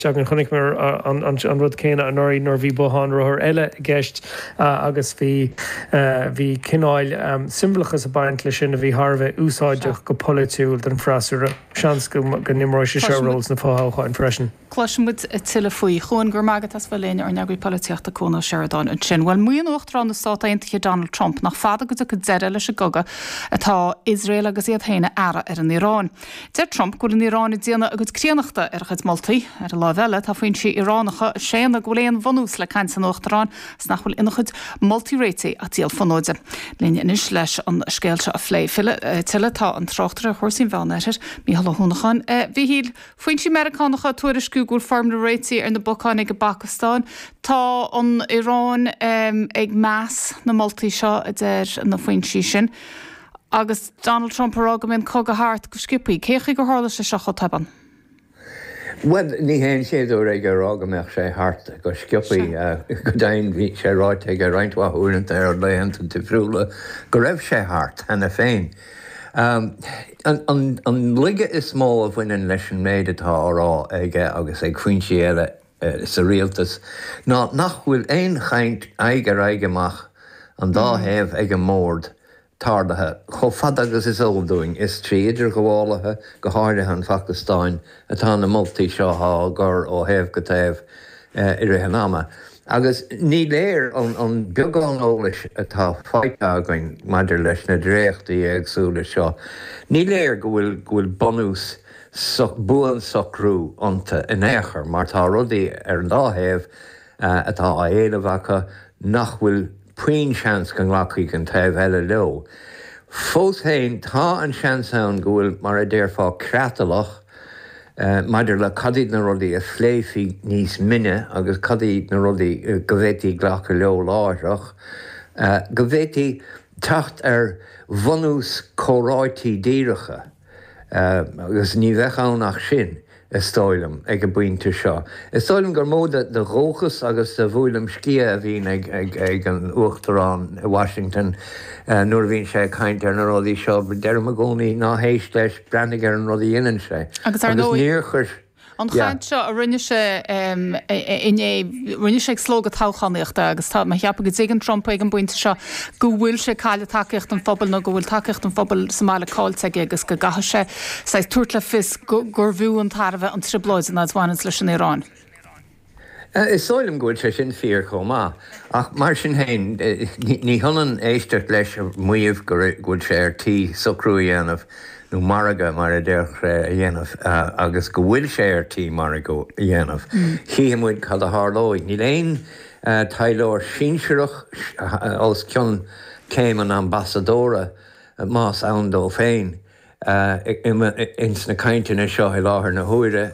Déarfainn, chonaic muid an rud céanna anuraidh nuair a bhí bothán rothair eile i gceist agus bhí bhí cineál siombalachas ag baint leis sin a bhí thar a bheith úsáideach go polaitiúil don fhreasúra. Seans go n-imreoidh sé seo ról sna fothoghcháin freisin. Cloisfimid tuilleadh faoi. Chuain, go raibh maith agat as bheith linn, ár n-eagraí polaitíochta Cuan Ó Seireadáin ansin. Bhuel, maíonn Uachtarán na Stát Aontaithe Donald Trump nach fada go dtiocfaidh deireadh leis an gcogadh atá Iosrael agus iad féin ag fearadh ar an Iaráin. Deir Trump go bhfuil an Iaráin ag déanamh a cuid críonnachta ar a chuid moltaí. Ar an láimh eile, tá foinsí Iaránacha ag séanadh go bhfuil aon bhunús le caint an Uachtaráin agus nach bhfuil ina chuid moltaí réitigh ach díol fonóide. Linn anois leis an scéal seo a phlé tuilleadh tá an tráchtaire ar chúrsaí an Mheán-Oirthir, Mícheál Ó hUanacháin. A Mhichíl, foinsí Meiriceánacha ag tuairisciú go bhfuil foirmle réitigh ar na bacáin ag an bPacastáin. Tá an Iaráin ag meas na moltaí seo, a deir na foinsí sin. Agus Donald Trump ag rá go mbeidh an cogadh thart go sciopthaí, cé chaoi gur tharla sé seo chomh tobann? Bhuel, ní hé an chéad uair aige a rá go mbeadh sé thart go sciopthaí. Go deimhin, bhí sé ráite aige roinnt mhaith uaireanta ar laethanta difriúla go raibh sé thart cheana féin. An laige is mó a bhaineann leis an méid atá á rá aige agus ag foinsí eile, sa rialtas ná nach bhfuil aon chaint aghaidh ar aghaidh amach an dá thaobh ag an mbord tarlaithe chomh fada agus is eol dúinn. Is trí idirghabhálaithe, go háirithe an Phacastáin, atá na moltaí seo á gcur ó thaobh go taobh i rith an ama. Agus ní léir ón beagán eolais atá faighte againn maidir leis na dréachtaí éagsúla seo, ní léir go bhfuil bunús buansocrú iontu in aon chor, mar tá rudaí ar an dá thaobh atá á éileamh acu nach bhfuil puinn seans go nglacfaidh an taobh eile leo. Fós féin, tá an seans ann go bhfuil, mar a déarfá, creatlach maidir le cad iad na rudaí a phléifí níos mine agus cad iad na rudaí go bhféadfaí glacadh leo láithreach go bhféadfaí teacht ar bhunús comhráite díreacha. Agus ní bheadh ann ach sin, is dóigh liom, ag an bpointe seo. Is dóigh liom gur mó de dhóchas agus de bhuaileam sciath a bhíonn ag an Uachtarán i Washington nuair a bhíonn sé ag caint ar na rudaí seo. Deirim i gcónaí, ná héist leis, breathnaigh ar an rud a dhéanann sé. an chaint seo a rinne sé inné, rinne sé ag slógadh toghchánaíochta agus tá mé ag ceapadh go dtuigeann Trump ag an bpointe seo go bhfuil sé ag cailleadh tacaíocht an phobail nó go bhfuil tacaíocht an phobail sa mbaile caillte aige agus go gcaithfidh sé saghas tabhairt le fios gurbh fhiú an tairbhe an trioblóid in áit a bhaineanns leis an Iaráin. Is dóigh liom go bhfuil sé sin fíor chomh maith, ach mar sin féin, ní hionann éisteacht leis a mhaíomh go bhfuil sé ar tí socrú a dhéanamh, nó margadh, mar a déarfadh sé, a dhéanamh, agus go bhfuil sé ar tí margadh a dhéanamh. Chífidh muid cad a tharlóidh. Níl aon taidhleoir sinsearach os cionn céim an ambasadóra, más ann dó féin, ins na cainteanna seo i láthair na huaire.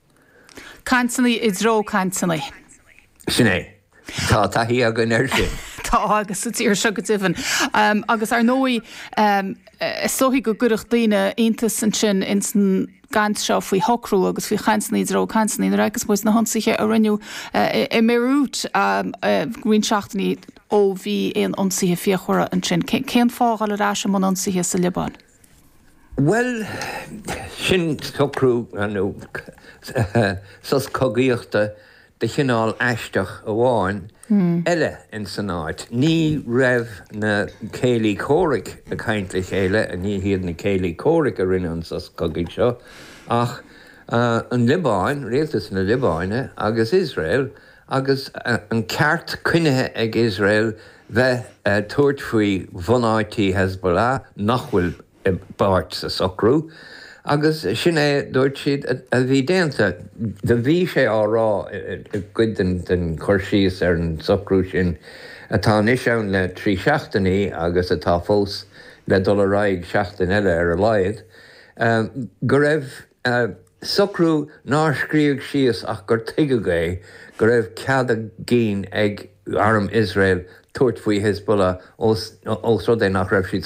cainteanna i dtreo cainteanna. Sin é. Tá taithí againn air sin. Tá, agus ins an tír seo go deimhin. Agus ar ndóigh, is dóigh go gcuirfeadh daoine iontas ansin ins an gcaint seo faoi shocrú agus faoi chainteanna i dtreo cainteanna nuair a fheiceas muid na hionsaithe a rinneadh i mBéiriút. Roinnt seachtainí ó bhí aon ionsaithe fíochmhara ansin. Cén fáth a dhul ar ais i mbun ionsaithe sa Liobáin? Bhuel, sin socrú, nó sos cogaíochta de chineál aisteach amháin eile ins an áit. Ní raibh na céilí comhraic ag caint le chéile, ní hiad na céilí comhraic a rinne an sos cogaidh seo, ach an Liobáin, rialtas na Liobáine agus Iosrael, Agus an ceart coinnithe ag Iosrael bheith ag tabhairt faoi bhunáití Hezbollah nach bhfuil i bpáirt sa socrú, agus sin é, dúirt siad, a bhí déanta. Do bhí sé á rá i gcuid den chur síos ar an socrú sin atá anois ann le trí seachtainí agus atá fós le dul ar aghaidh seachtain eile ar a laghad, go raibh, socrú nár scríobhadh síos ach gur tuigeadh é go raibh cead a gcinn ag arm Iosrael tabhairt faoi Hizbullah ós rud é nach raibh siad